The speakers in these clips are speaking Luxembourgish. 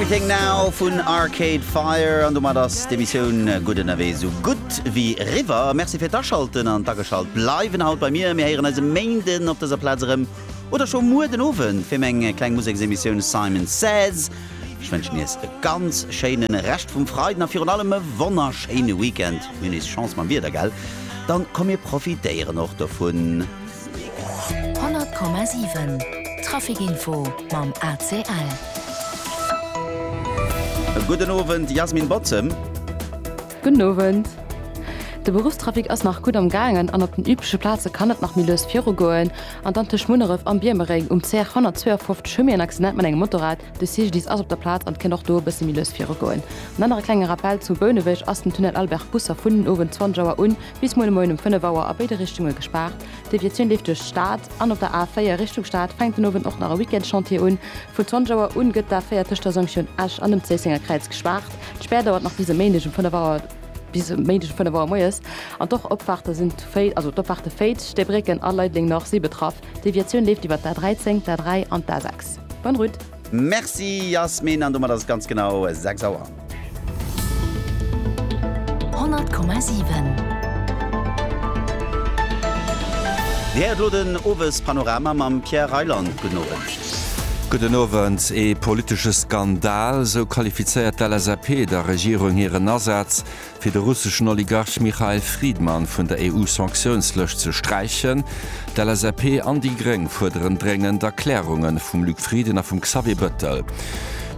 Everything Now vun Arcade Fire an domat ass d'Emissioun Gutt Ënnerwee sou gutt wéi eriwwer. Merci fir d'Aschalten an d'Ageschalt bleiwen haut bei mir. Mir héieren eis e Méinden op dëser Plaz erëm oder scho muer den Owend fir meng kleng Museksemissioun Simon Says. Ech wënschen iech e ganz schéine Rescht vum Freiden a virun allem e wonnerschéine Weekend. Mir hunn nees Chance mam Wieder, gell? Dann komm mir profitéieren och dovun. 100,7 Trafic info mam ACL. Gudden Owend Jasmin Bottem. Gudden Owend. De Beruffstrafic ass nach gutt am gaangen an op den übleche Plaze kann et nach méi lues viru goen. An dann tëscht Munneref an Biermereng um CR 152 hu mir en Accident mat engem Motorrad. De CGDIS ass op der Plaz an et kéint och do e bësse méi lues viru goen. En anere klenge Rappel, Zu Bouneweg ass den Tunnel Albert Busser vun den Owend 20 Auer un Bis muer de Moien um 5 Auer a béide Richtunge gespaart. D'Deviatioun leeft duerch d'Stad an op der A4 Richtung Stad fänkt den Owend och nach e Weekendschantier un. Vun 20 Auer un gëtt d'A4 tëscht der Jonction Esch an dem Zéissenger Kräiz gespaart. D'Spär dauert nach bis e Méindeg um 5 Auer bis e Méindeg um 5 Auer moies an d'Och Opfaarte sinn d'Féit, also d'Opfaarte Féit, Stäbrécken a Leideleng Nord si betraff. D'Deviatioun leeft iwwert d'A13, d'A3 an d'A6. Bonne route! Merci Yasmine, an domat ass et ganz genau 6 Auer. Dir héiert elo den Owespanorama mam Pierre Reyland. Gudden Owend. Gudden Owend. Ee politesche Skandal, esou qualifizéiert d'LSAP der Regierung hiren Asaz, fir de russeschen Oligarch Mikhail Fridman vun der EU-Sanktiounslëscht ze sträichen. D'LSAP an déi Gréng fuerderen dréngend Erklärunge vum Luc Frieden a vum Xavier Bettel.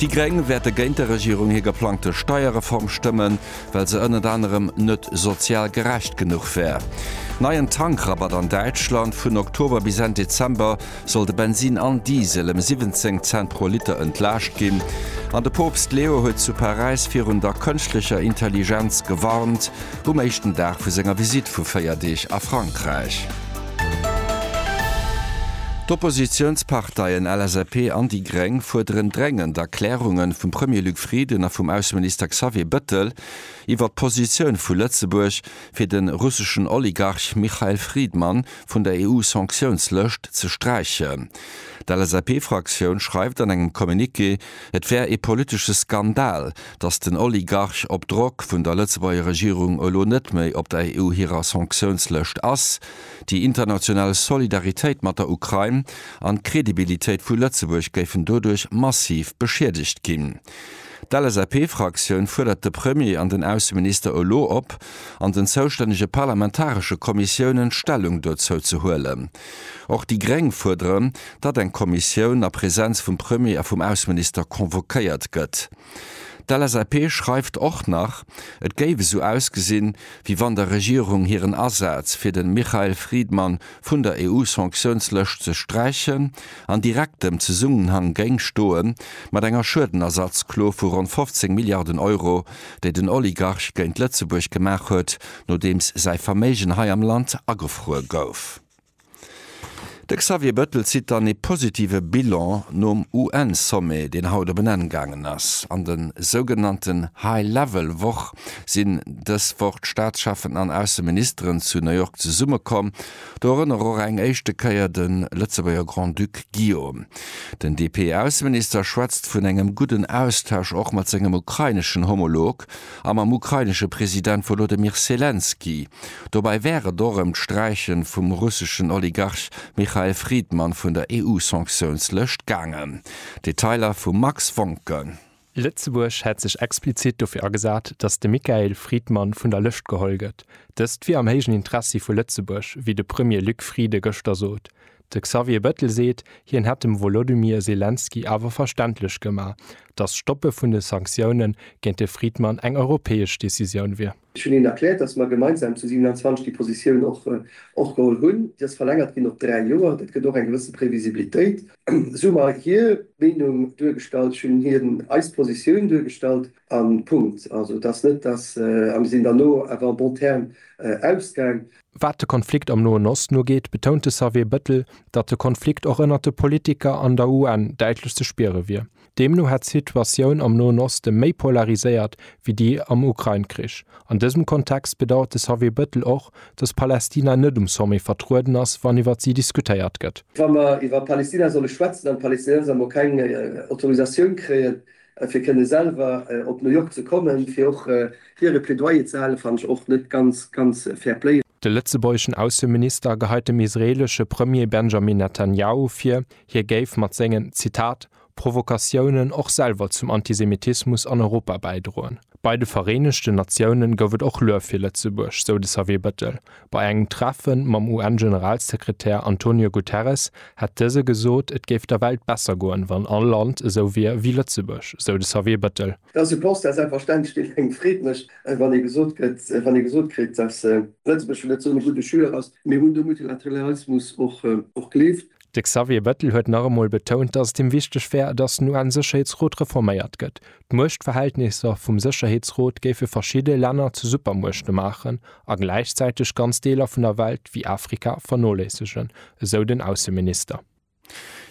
Déi Gréng wäerte géint der Regierung hir geplangte Steierreform stëmmen, well se ënnert anerem net sozial gerecht genuch wär. Neien Tankrabatt an Däitschland, vun Oktober bis Enn Dezember. soll de Bensin an Diesel ëm 17 Cent pro Liter entlaascht ginn an de Poopst Leo huet zu Paräis virun der kënschtlecher Intelligenz gewarnt, um éischten Dag vu senger Visitt vu 4 Deeg a Frankräich. D'Oppositiounsparteien LSAP an déi Gréng fuerderen dréngend Erklärunge vum Premier Luc Frieden a vum Ausseminister Xavier Bëttel iwwer d'Positioun vu Lëtzebuerg fir de russeschen Oligarch Michael Fridman vun der EU-Sanktiounslëscht ze sträichen. D'LSAP-Fraktioun schreift an engem Communiqué, et wär ee politesche Skandal, datt den Oligarch op Drock vun der Lëtzebuerger Regierung elo net méi op der EU hirer Sanktiounslëscht ass. Déi international Solidaritéit mat der Ukrain an d'Credibilitéit vu Lëtzebuerg géifen doduerch massiv beschiedegt ginn. D'LSAP-Fraktioun fuerdert de Premier an den Ausseminister elo op, an den zoustännege parlamentaresche Kommissiounen Stellung dozou ze huelen. Och déi Gréng fuerderen, datt eng Kommissioun a Präsenz vum Premier a vum Ausseminister convoquéiert gëtt. D'LSAP schreift och nach, et géif esou ausgesinn, wéi wann der Regierung hiren Asaz fir de Mikhail Fridman vun der EU-Sanktiouns-Lëscht ze sträichen, an direktem Zesummenhang géing stoe mat enger Schuedenersatzklo vu ronn 15 Milliarden Euro, déi den Oligarch géint Lëtzebuerg gemaach huet, nodeems säi Verméigen hei am Land agefruer gouf. De Xavier Bettel zitt dann ee positive Bilan nom UN-Sommet, deen haut op en Enn gaangen ass, an de sougenannten High-Level-Woch, sinn dës Woch d'Staatscheffen an Ausseministeren zu New York zesummekomm. Do erënnere och eng éischte Kéier de Lëtzebuerger Grand-Duc Guillaume. Den DP-Ausseminister schwätzt vun engem gudden Austausch och mat sengem ukraineschen Homolog a mam ukrainesche President Wolodymyr Selenskyj. Dobäi wär et och ëm d'Sträiche vum russeschen Oligarch Michael Fridman vun der EU-Sanktiounslëscht gaangen. Detailer vum Max Wonken. Lëtzebuerg hätt sech explizit dofir agesat, datt de Michael Friedmann vun der Lëscht geholl gëtt. Dëst wier am héijen Interessi vu Lëtzebuerg, wéi de Premier Luc Frieden gëschter sot. De Xavier Bettel seet, hien hätt dem Wolodymyr Selenskyj awer verständlech gemaach, datt d'Stoppe vun de Sanktioune géint de Friedmann eng europäesch Decisioun wier. Ech hunn hinnen erkläert, dass mer gemeinsam zu 27 déi Positioun och geholl hunn. Déi ass verlängert ginn op dräi Joer. Dat gëtt och eng gewësse Previsibilitéit. Esou hu mer hir Meenung duergestallt, ech hunn hinnen eis Positioun duergestallt a Punkt. Also et ass net, dass, a mir sinn dann elo awer en bon terme ausgaang. Wat de Konflikt am Noen Osten ugeet, betount de Xavier Bettel, datt de Konflikt och ënnert de Politiker an der UN däitlech ze spiere wier. Deemno hätt d'Situatioun am Noen Oste méi polariséiert wéi déi am Ukrain-Krich. An dësem Kontext bedauert de Xavier Bettel och, datt Palästina net um Sommet vertrueden ass, wann iwwer si diskutéiert gëtt. Wa mer iwwer Palästina solle schwätzen an d'Palästinenser emol keng Autorisatioun kréien, fir kënne selwer op New York ze kommen, fir och hiere Plädoyer ze halen, fannen ech och net ganz, ganz fair play. De lëtzebuergeschen Ausseminister geheit dem israeelesche Premier Benjamin Netanjahu vir, hie géif mat sengen, Zitat, Provokatiounen och selwer zum Antisemitismus an Europa bäidroen. Bei de Vereenegten Natiounen gouf et och Luef fir Lëtzebuerg, sou de Xavier Bettel. Bei engem Treffe mam UN-Generalsekretär Antonio Guterres hätt dëse gesot, et géif der Welt besser goen, wann all Land esou wier ewéi Lëtzebuerg, sou de Xavier Bettel. Et ass e Constat, selbstverständlech, deen engem Freed mécht, wann ee gesot gëtt, wann ee gesot kritt, datt Lëtzebuerg vläicht net esou e gudde Joueur ass. Mir hunn de Multilateralismus och gleeft. De Xavier Bettel huet nach emol betount, datt et him wichteg wär, datt den UN-Sécherheetsrot reforméiert gëtt. D'Muechtverhältnisser vum Sécherheetsrot géife verschidde Länner zu Supermuechte maachen a gläichzäiteg ganz Deeler vun der Welt, wéi Afrika, vernoléissegen, esou den Ausseminister.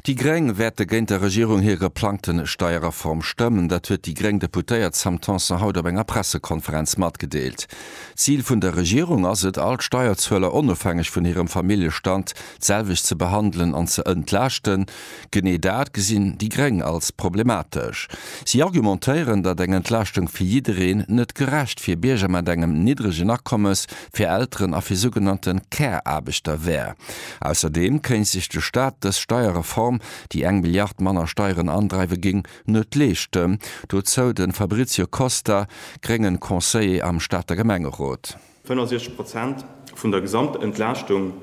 Déi Gréng wäerte géint der Regierung hir geplangte Steierreform stëmmen. Dat huet déi gréng Deputéiert Sam Tanson haut op enger Pressekonferenz matgedeelt. D'Zil vun der Regierung ass et, all d'Steierzueler, onofhängeg vun hirem Familljestand, d'selwecht ze behandelen an ze entlaaschten, genee dat gesinn déi Gréng als problematesch. Si argumentéieren, datt eng Entlaaschtung fir jiddereen net gerecht fir Bierger mat engem niddregen Akommes, fir Elteren a fir sougenannte Care-Aarbechter wär. Ausserdeem kéint sech de Staat dës Steierreform, déi eng Milliard manner Steieren andreiwe géing, net leeschten. Dozou de Fabrizio Costa, gréngen Conseiller am Stater Gemengerot. 65 Prozent vun der Gesamtentlaaschtung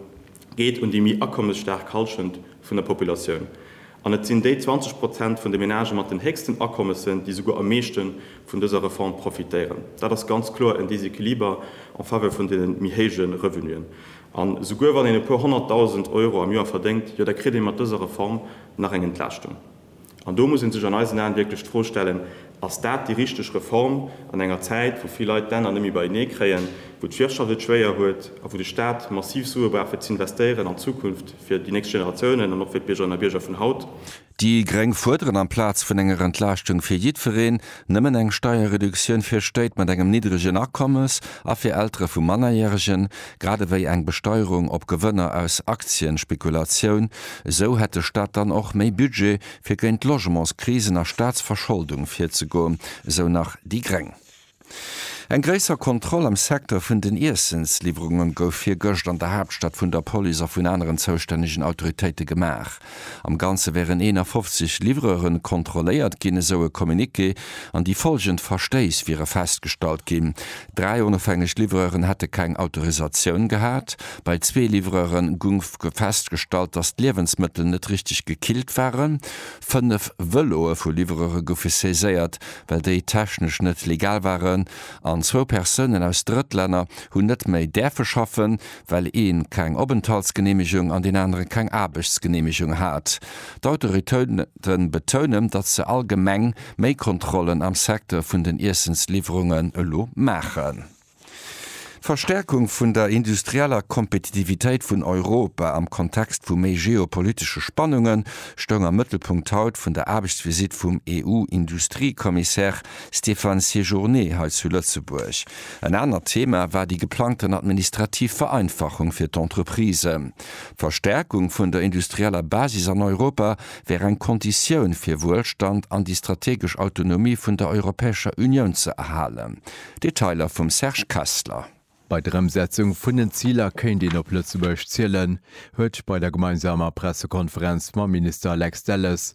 geet un déi méi akommesstaark Halschent vun der Populatioun. An et sinn déi 20 Prozent vun de Menagë mat den héchsten Akommessen, déi souguer am meeschte vun dëser Reform profitéieren. Dat ass ganz kloer en Déséquiliber en faveur vun de méi héije Revenuen. An souguer wann een e puer honnertdausend Euro am Joer verdéngt, jo da kritt ee mat dëser Reform nach eng Entlaaschtung. An do muss ee sech an eisen Aen wierklech d'Fro stellen, Ass dat déi richteg Reform an enger Zäit, wou vill Leit d'Enner net méi beienee kréien, wou d'Wirtschaft et schwéier huet a wou de Staat massiv Sue brauch fir z'investéieren an d'Zukunft fir déi nächst Generatiounen an och fir d'Biergerinnen a Bierger vun haut? Déi gréng fuerderen amplaz vun enger Entlaaschtung fir jiddwereen, Nëmmen eng Steierreduktioun fir Stéit mat engem niddregen Akommes a fir Eltere vu Mannerjäregen, grad ewéi eng Besteierung op Gewënner aus Aktienspekulatioun, esou hätt de Staat dann och méi Budget, fir géint d'Logementskrisen a Staatsverscholdung virzegoen, esou nach déi gréng. Eng gréisser Kontroll am Secteur vun den Iessensliwwerunge gouf virgëscht an der Haaptstad vun der Police a vun aneren zoustännegen Autoritéite gemaach. Am Ganze wären 51 Livreuren kontrolléiert ginn, esou e Communiqué, an déi follgend Verstéiss wiere festgestallt ginn, Dräi onofhängeg Livreuren hätte keng Autorisatioun gehat, bei zwee Livreuren gung festgestallt, datt d'Liewensmëttel net richteg gekillt waren, fënnef Vëloe vu Livreure goufe saiséiert, well déi technesch net legal waren, an zwou Persounen aus Drëttlänner hunn net méi däerfe schaffen, well ee keng Openthaltsgeneemegung an deen anere keng Aarbechtsgeneemegung hat. D'Autoritéite betounen, datt se allgemeng méi Kontrollen am Secteur vun den Iessensliwwerungen elo maachen. D'Verstäerkung vun der industrieller Kompetitivitéit vun Europa am Kontext vu méi geopolitesche Spannunge stoung am Mëttelpunkt haut vun der Aarbechtsvisitt vum EU-Industriekommissär Stéphane Séjourné hei zu Lëtzebuerg. En anert Thema war déi geplangten administrativ Vereinfachung fir d'Entreprisen. D'Verstärkung vun der industrieller Basis an Europa wär eng Konditioun fir Wuelstand an déi strategesch Autonomie vun der Europäescher Unioun ze erhalen. Detailer vum Serge Kessler. Bei der Ëmsetzung vun den Ziler kéint een op Lëtzebuerg zielen, huet bei der gemeinsamer Pressekonferenz mam Minister Lex Delles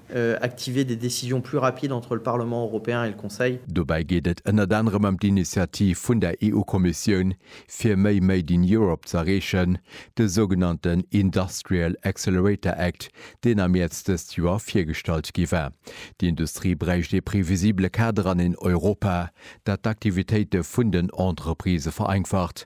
Activer des décisions plus rapides entre le Parlement européen et le Conseil. Dobäi geet et ënnert anerem ëm d'Initiativ vun der EU-Kommissioun, fir méi Made in Europe ze erreechen, de sougenannten Industrial Accelerator Act, deen am Mäerz dëst Joer virgestallt gi war. D'Industrie bräicht ee previsibele Kader an een Europa, dat d'Aktivitéite vun den Entreprisë vereinfacht,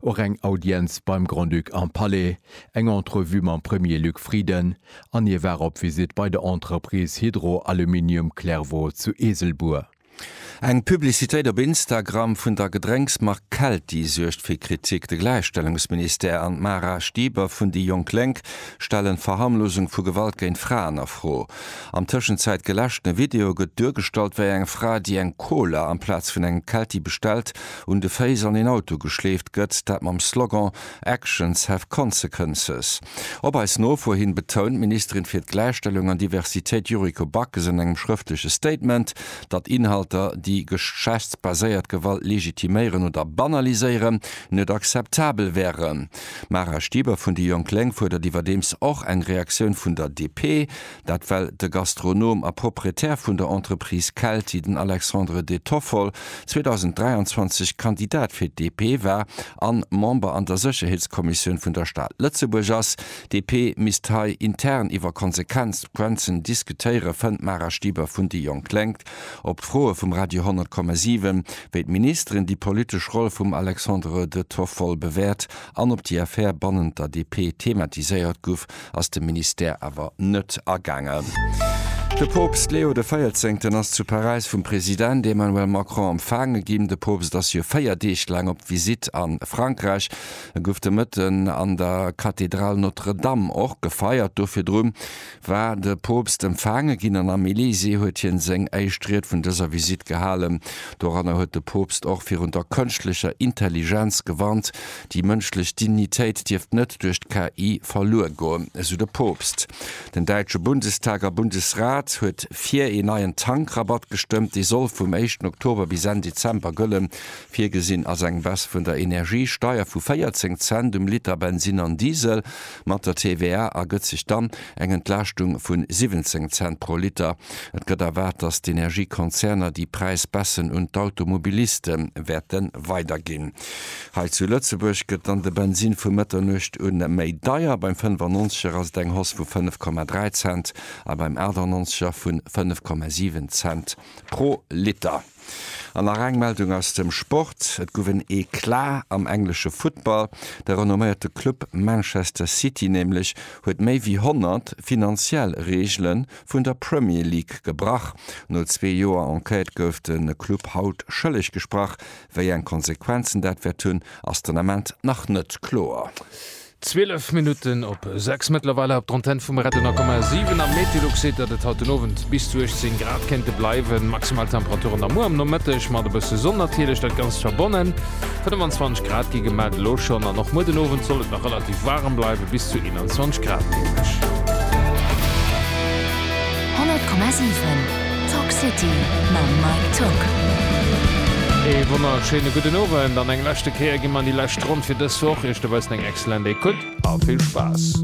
Och eng Audienz beim Grand-Duc am Palais, eng Entrevue mam Premier Luc Frieden an hie war op Visitt bei der Entreprise Hydro Aluminium Clairvaux zu Eeselbuer. Eng Publicitéit op Instagram vun der Gedrénksmark Kelti suergt fir Kritik. De Gläichstellungsministère an d'Mara Stieber vun déi jonk Lénk stellen d'Verharmlosung vu Gewalt géint Fraen a Fro. Am Tëschenzäit geläschten Video gëtt duergestallt, wéi eng Fra, déi eng Cola amplaz vun engem Kelti bestellt, un de Féiss an een Auto geschleeft gëtt, dat mam Slogan Actions have consequences. Op eis Nofuer hin betount d'Ministerin fir d'Gläichstellung an Diversitéit Yuriko Backes an engem schrëftleche Statement, datt Inhalter, déi geschlechtsbaséiert Gewalt legitiméieren oder banaliséieren, net akzeptabel wären. D'Mara Stieber vun déi jonk Lénk fuerdert iwwerdeems och eng Reaktioun vun der DP. Dat well de Gastronom a Proprietär vun der Entreprise Kelti, den Alexandre De Toffol, 2023 Kandidat fir d'DP war an Member an der Sécherheetskommissioun vun der Stad Lëtzebuerg ass. D'DP misst hei intern iwwer Konsequenzen diskutéieren, fënnt d'Mara Stieber vun déi jonk Lénk. Op d'Froe vum Radio 10,7, wéi d'Ministeren déi politesch Roll vum Alexandre De Toffol bewäert an ob déi Affär bannent der DP thematiséiert guff, ass de Ministère awer net agaangen. De Poopst Leo de Véierzéngten ass zu Paräis vum President Emmanuel Macron empfaange ginn. De Poopst ass jo véier Deeg laang op Visitt a Frankräich. E gouf de Mëtten an der Kathedral Notre-Dame och gefeiert. Do virdru war de Poopst empfaange ginn an am Elysée huet hien seng éischt Ried vun dëser Visitt gehalen. Doranner huet de Poopst och virun der kënschtlecher Intelligenz gewarnt, Déi mënschlech Dignitéit dierft net duerch d'KI verluer goen, esou de Poopst. Den däitsche Bundestag a Bundesrat huet fir een neien Tankrabatt gestëmmt. Dee soll vum éischten Oktober bis Enn Dezember gëllen. Virgesinn ass eng Baisse vun der Energiesteier vu 14 Cent um Liter Bensin an Diesel. Mat der TVA ergëtt sech dann eng Entlaaschtung vun 17 Cent pro Liter. Et gëtt erwaart, datt d'Energiekonzerner déi Präisbaisse un d'Automobiliste wäerte weiderginn. Hei zu Lëtzebuerg gëtt dann de Bensin vu Mëtternuecht u méi deier, beim 95er ass et eng Hausse vu 5,3 Cent a beim 98er vu 5,7 Cent pro Liter. An nach eng Meldung aus dem Sport, Et gouf en Eclat am englesche Futtball. De renomméierte Club Manchester City nämlech huet méi wéi 100 finanziell Reegele vun der Premier League gebrach. No zwee Joer Enquête gouf de Club haut schëlleg gesprach, Wéi eng Konsequenzen dat wäert hunn, ass den Ament nach net kloer. 12 Minutten op 6. Mëttlerweil hei op der Antenn vum Red 100,7. Am Metilux seet, datt et haut den Owend bis zu 18 Grad kéinte bleiwen. Maximal Temperaturen da muer am Nomëtteg mat e bësse Sonn natierlech, dat Ganzt verbonnen. 25 Grad gi gemellt elo schonn an och muer den Owend soll et nach relativ waarem bleiwen, bis zu 21 Grad nämlech. 100,7. Talk City mam Mike Tock. Ee wonnerschéine gudden Owend an eng leschte Kéier gi mer an déi lescht Ronn fir dës Woch. Iech dobaussen eng excellent Écoute a vill Spaass.